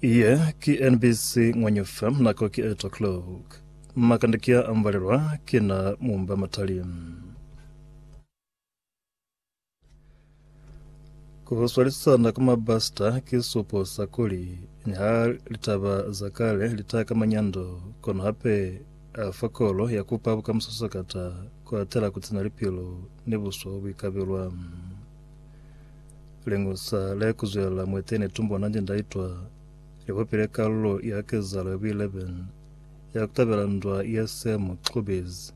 Ye ki NBC Ngwanyufa, nako ki 8 o'clock. Makande ki a ambalelwa ki na mumba matali. Ku swalisana kwa mabasita ki supo sa kuli niha litaba za kale li ta kama nyando, kono hape a fa kolo ya kupa bukamuso sakata ku atela ku tsina lipilo ni buswa bo buikabelwa. Lingusa le kuzwelela mwete ne tumbo nanje ndaitwa likopile kalulo ya kezalo ya buileben ya kutabela ndwa ya Sam Clubes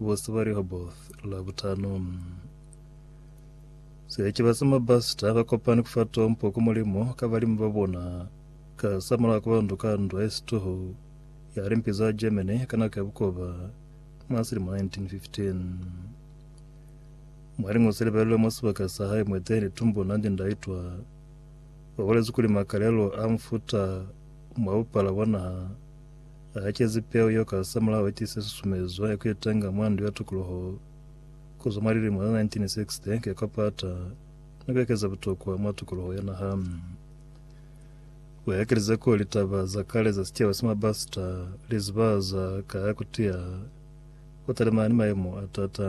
bose ba Rehoboth la butano. Sechiba sa mabasita ba kopani kufa tompo ku Mulimo ka balimi ba bona ka sa mulaho ka bandu ka ndwa ya situhu ya limpi za Germany ka nako ya bukoba mwa selimo 1915. Mwaliñuze libelelwe mwa sibaka sa hae mwa Edeni tumbo nandi ndaitwa. Wabolezi kuli makalelo a mufuta mwa bupala bwa naha aakezi peu yeo ka hasamulaho itiise susumezo ya kuitenga mwa ndu ya tukuluho. Kuzwa mwa lilimo za 1960 ke kwapata ni kuekeza butokwa mwa tukuluho ya naha. Uekelize ko litaba za kale za sicaba sa Mabasita lizibahaza ka ya kutiya Ku talimana ni mayemo a t'ata,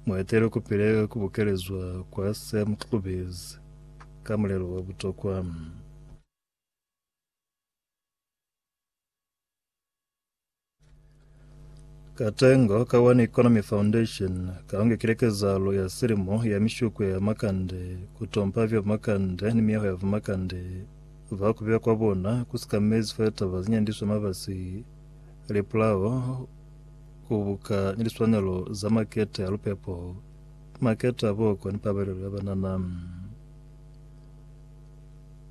mu etelwe ku pile ku bukelezwa kwa se mu kukubezi ka mulelo wa butokwa. Katengo ka One Economy Foundation ka ongekile kezahalo ya silimo ya mishuko ya makande ku tompa vya bumakande ni miyaho ya bumakande va ku beya kwa bona ku sikamezi fa litaba ze nyandiswa mabasi Lipulao ku buka ni liswanelo za makete a lupepo, makete a boko ni pabalelo ya banana.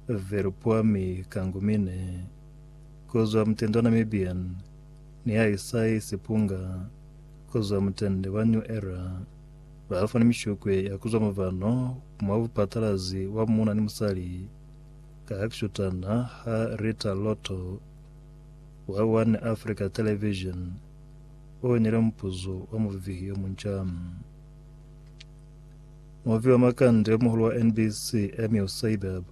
Velupuami Kangumine, ku zwa mutende wa Namibian, ni Haisai Sipunga, ku zwa mutende wa New Era, ba fani mishukwe ya ku zwa muvano mwa bupatalazi wa muuna ni musali ka hakishutana ha Rita Lotto. wa One Africa Television o inile mupuzo wa muvivihi yo munca. Muvivi wa makande yo muhulu wa NBC, Emil Seibab,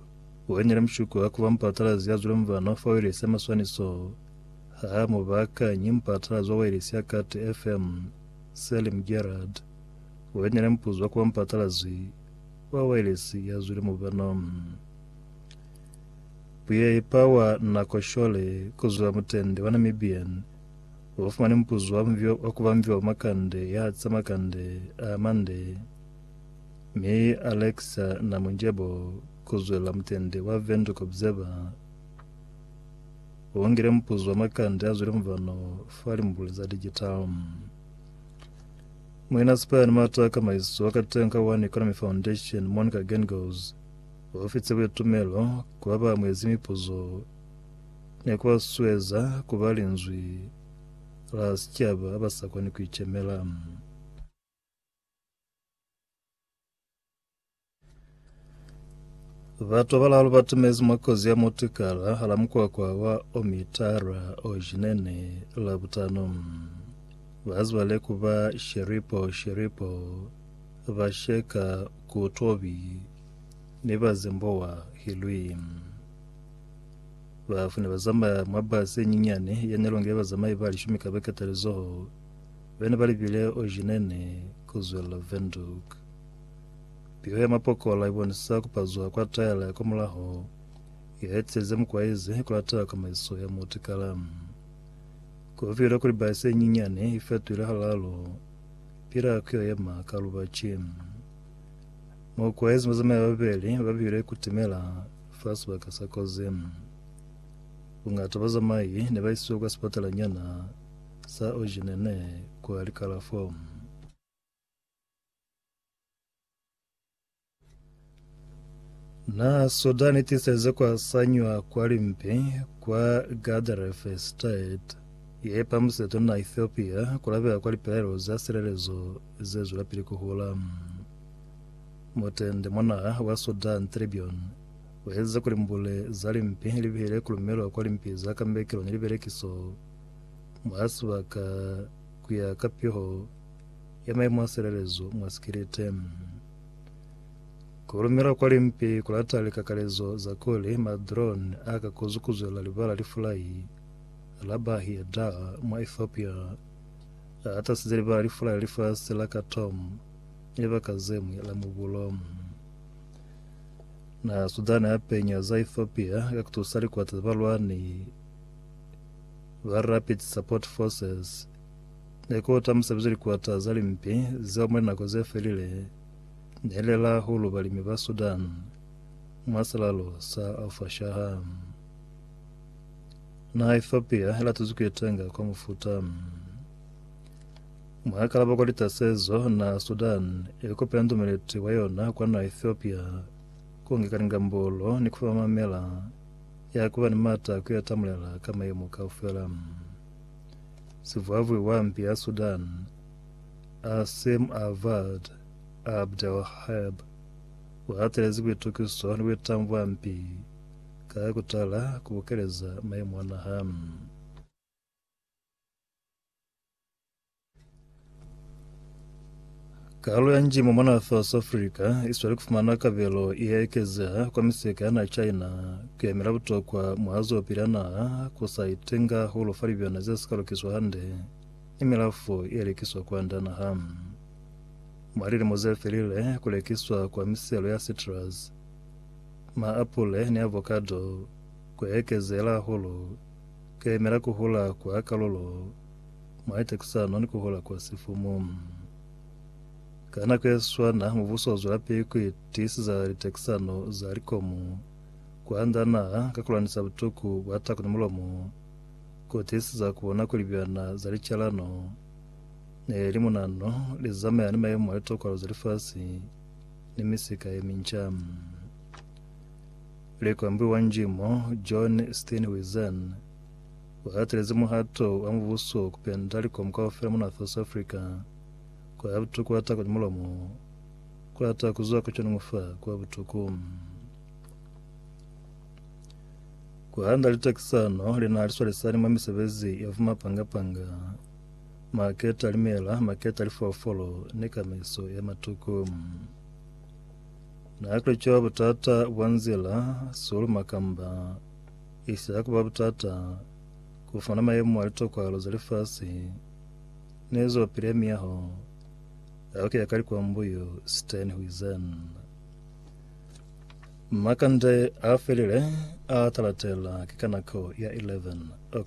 o inile mushuko wa ku ba mupatalazi ya zwile mubano fa wailesi ya maswaniso ha a mu baakanyi mupatalazi wa wailesi ya Kati FM, Selim Gerard, o inile mupuzo wa ku ba mupatalazi wa wailesi ya zwile mubano. Buyaepa wa Nako Shole kuzwa mutende wa Namibian ubafumani mupuzo wa mvio wa kubambiwa kwa makande ya tsa makande a mande, mi Alexa Namonjebo kuzwelela mutende wa Windhoek Observer uungile mupuzo wa makande a zwile mvano fa limbuli za digital. Muinasipani Mata Kamaiso wa Katenga One Economy Foundation Monica Gengos Ku fi tsebe tumelo ku ba ba amuezi mipuzo ne ku ba susueza ku ba linzwi la sicaba ba sa koni ku icemela. Batu ba balalu ba tumezi mwa kozi ya mutikala hala mukwakwa wa Omitara Ojinene Labutano. Ba zibale ku ba Sheripo Sheripo, ba sheka Ku Tobi ne ba zembowa ki lwi? Ba f'u ne ba zamaya mwa basi ye nyinyani ye ne longile bazamai ba lishumi ka beke talizoho be ne ba libile Oghineni ku zwelela Windhoek. Piho ya mapokola i bonisa ku pazuha kwa taela ya kwamulaho ye ha itize mukwaizi ku latela kamaiso ya mutikala. Ku filwe kuli basi ye nyinyani i fetohile halalo Pila ku yo yema ka lubaci. Mo kwahezi mazomi a babeli ba bihile ku timela fa sibaka sa kozi. Bungata bazamai ne ba isiwe kwa sipatalanyana sa Ojenene kwa likalafo. Na soda ni tiseze kwa sanywa kwa limpi kwa Gadarfe State ye pamuseto na Ethiopia kulabela kwa lipelaelo za silelezo ze zwelapili kuhula. Mutende mona wa Sudan Tribune uezeza kuli mbule za limpi libihile kulumelwa kwa limpi za kambekelo ni libelekiso mwa sibaka kuya ka piho ya maemo a silelezo mwa sikilite. Ku lumela kwa limpi ku lata likakalezo za kuli ma-drone a ka kuzukuzwela libala lifulai la Bahir Dar mwa Ethiopia a hatasize libala lifulai la lifasi la Khartoum libaka zeñwi la mubulo. Naha Sudan ya penya za Ethiopia ka kutusa likwata za balwani ba Rapid Support Forces Ne ku ta musebezi likwata za limpi zeo mwa linako ze felile ne li la hulu balimi ba Sudan mwa silalo sa Al-Fashaha. Naha ya Ethiopia i latezi ku itenga kwa mufuta. Mwa kalabo kwa litasezo, naha ya Sudan i kopela ndumeleti wa yona kwa naha ya Ethiopia ku ngeka lingambolo ni ku fa mamela ya ku ba ni mata a ku itamulela ka mayemo kaufela. Sivwavwi wa mpi ya Sudan, Asim Avad Abdelwahab, u hatelezi buitukiso ni buitangu bwa mpi ka ku tala ku bukeleza maimu a naha. Karolo ya njimo mwa naha South Africa isweli kufumana kabelo iya ekezeha kwa miseka ya naha China kuyemela butokwa mwa zwelopili ya naha kusa itenga hulu fa libyana zesika lukiswa hande ni milafo ye likiswa kwanda naha. Mwa lilimo zefelile, kulekiswa kwa miselo ya citrus, maapule ni avocado, kuya ekezeela hahulu, kuyemela kuhula kwa kalulo Maita ki sa noni ku hola kwa sifumu. Ka nako ye swana, mubuso u zwelapili ku itiisiza litekisano za likomu kwa nda naha ka ku lwanisa butuku bwa tako ni mulomo, ku tiisiza ku bona kuli byana za licalano ni limunano li zamaya ni mayemo a litokolo za lifasi ni misika ye minca. Likwambi wa njimo John Steenhuisen, U hatelezi muhato wa mubuso ku penda likomu kaufela muna South Africa, kwa ya butuku wa tako ni mulomo, ku lata ku zwa ku conoñu fa kwa butuku. Ku handa litakisano li na li swalisani mwa misebezi ya vumapanga-panga, maketa a limela, maketa a lifolofolo, ni kamaiso ya matuku. Na ku li cwa butata bwa nzila, sulu, makamba, Isi ha ku ba butata ku fumana mayemo a litokwalo za lifasi ne zwapili ya miyaho yao ki ya ka likwambo, yu Stern huizen. Makande a felile a talatela ki ka nako ya 11:00.